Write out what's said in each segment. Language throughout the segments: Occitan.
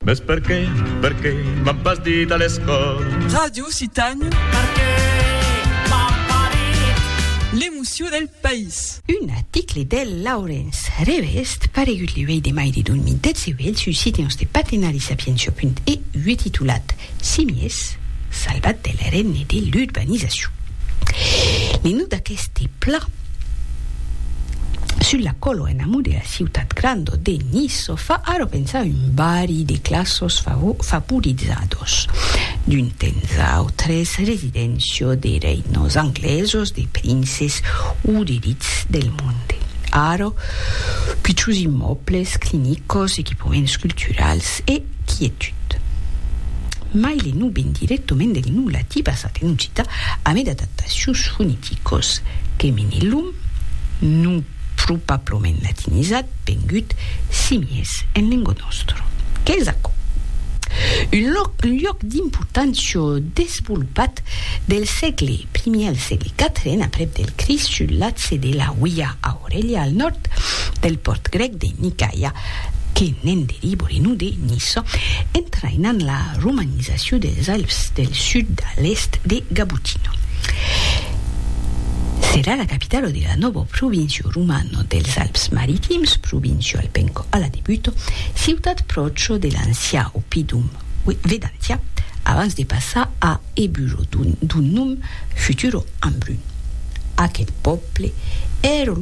Mès perqué, perqué m'an pas dit a l'escòla. Ràdio Occitània. Perqué m'an pas dit. L'emocion del país. Un article del Laurens Revest paregut le 8 de mai de 2018 sus Siteons de Patenari Sapientia.eu titulat Simies salvat del règne de l'urbanizacion. Le nòu d'aqueste plan, Sul la colo en amor de la ciutat grando de Niço fa ara pensar un bari de classos favorizados, d'un temps autres residéncia de reinos anglesos, de princes o d'elits del monde. Ara, pichus immòbles, clinicos, equipaments culturals e Quietud. Mai le nu ven directoment del nu latí basat en occità a mai d'adaptacions foneticos, Teminillum, nu probablament latinizat, vengut, simies, en lengua nòstra. Qu'es aquò? Un lòc, un lloc d'important çò desvolopat del sègle primièr al sègle quatrien aprèp del Crist sul latge de la Huia Aurelia al nòrd del pòrt grèc de Nicaia, que ne'n delibori non de Niçò, entraïnant la romanizacion dels Alps del sud a l'èst de Gabutino. Serà la capitalo de la nòva província romana dels Alps Maritims, Provincio Alpenco a la debuta, ciutat pròcha de l'ancià oppidum Vedantia, abans de passar a e bulo d'un nom futuro Ambrun. Aqueth pòble ère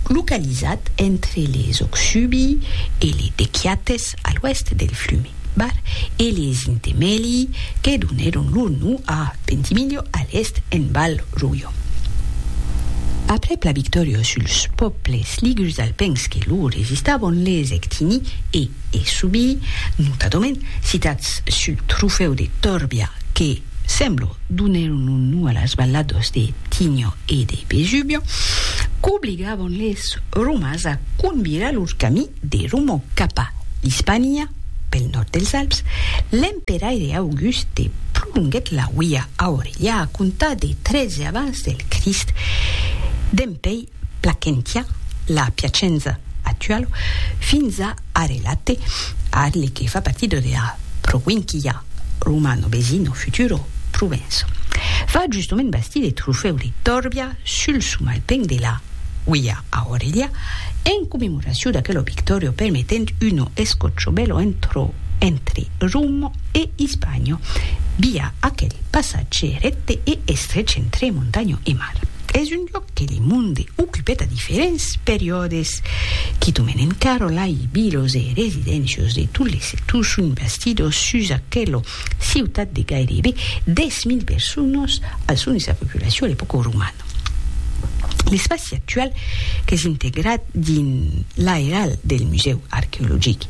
localizat entre les Oxubi e les Dequiates a l'oèst del flume Bar e les Intemeli que donèron lor nom a Ventimiglia a l'èst en Val Roio. Aprèp la victòria suls pòbles ligurs alpins que lor resistavan les Ectini e es Subi, notadament Citats su Trofèu de Torbia que, semblo, donèron lo nom a las valladas de Tinio e de Vesubio, qu'obligavan les Romas a convirar lor camí de Roma cap a l'Ispania, pel nòrd dels Alps, l'emperaire Auguste prolonguèt la uia Aurelia a comptar de 13 abans del Crist, dempuèi Placentia, la Piacenza actualo, fins a Arelate, arle que fa partido de la provinquia romano Besino, futuro Provenço. Fa justement bastir eth trofèu de Torbia sul somalpenc de la Uia Aurelia, en commemoracion d'aquelo victòrio permetent uno escòcho bèlo entro entre Romo e Ispanho, via aquel passatge recte e estrech entre montanho e mar. Es un lloc. que le monde ocupèt a diferents periòdes, quitament encara lai vilos e residencios de tot l'Esetú son bastidos sus aquela ciutat de gairebe 10.000 personas al son de sa populacion a l'epòca romana. L'espaci actual qu'es integrat dins l'airal del Musèu Arqueologic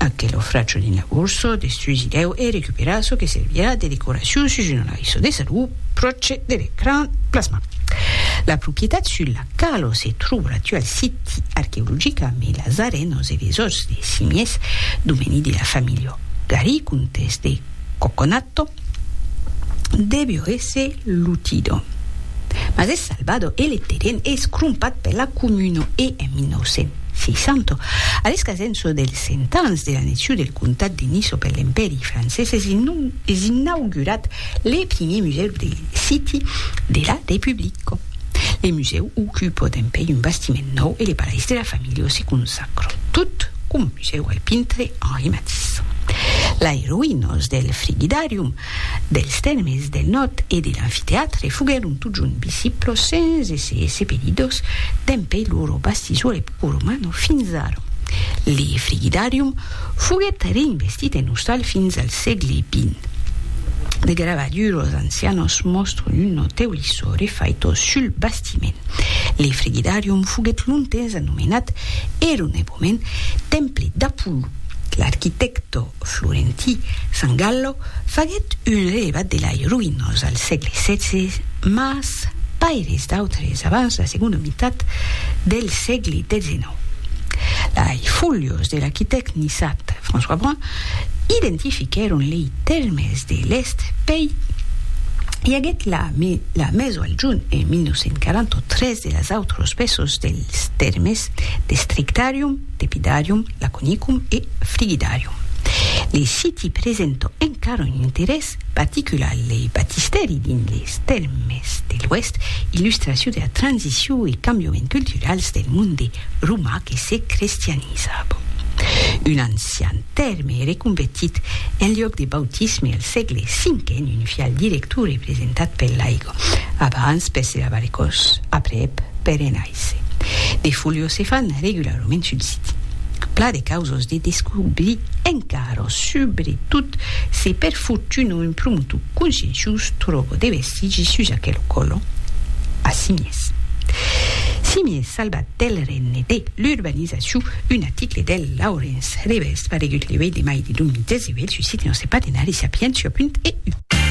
Aquel ofràcho dins la borsa de sus i deu e recuperar çò que servirà de decoracion sus una laissa de salut pròche de l'ecran plasma. La propietat sus la quala se tròba l'actual siti arqueologic a mai las arenas e les òsses de simies, domeni de la familha Gari, comtes de Coconato, Devió èsser Lutido. Mas es Salvador e le terren es crompat per la comuna e en 1960, a l'escasença dels cent ans de l'annexion del comtat de Niça per l'Empèri francés, es inaugurat le primier musèu de City de la Republica. Le musèu ocupa dempuèi un bastiment nòu e le palais de la familha se conserva. Aquò tot conduiseu al pintre Henri Matisse. Lai roïnas del Frigidarium, dels Tèrmes del Nòrd e de l'Amfitèatre foguèron totjorn visiblas sens èsser sepelidas dempè lor bastisura epoca romana fins ara. Le Frigidarium foguèt reinvestit en ostal fins al sègle xx. De gravaduras ancianas mòstran un notèu lissò refaita sul bastit. bastiment. Le Frigidarium foguèt longtemps anomenat eronèboments Temple d'Apolló. L'arquitècto florentí San Gallo faguèt un relevat de lai roïnós al sègle xvi, mas pas eres d'autres abans la segonda mitat del sègle xix. Lai fòlios de l'arquitèct niçat François Brun identifiquèron lei Telmès de l'Èst pei i aguèt la la meso al junh en 1948 tres de las autros pesos dels tèrmes de Strictarium, Tepidarium, Laconicum e Frigidarium. Le siti presenta encara un interès particular le batistèri dins les Telmès de l'Oèst, illustracion de la transicion e cambiament culturals del monde romà que se crestianizava. Un Ancian tèrme e reconvertit en liòc de bautisme al sègle cinque en un fial director representat per l'aigua, abans per se lavar es còs, aprèp per enaiser. De foliós se fan regularament sul siti. Pla de causas de descobrir encara, subretot se per fortuna un promotor conscienciós tròba de vestigis sus aquel colon a Simiès. Simiès salvat del règne de l'urbanizacion. Çu un article del Laurens Ribes paregut le 8 de mai de 2018 sus site Nòste Partenari Sapientia.eu.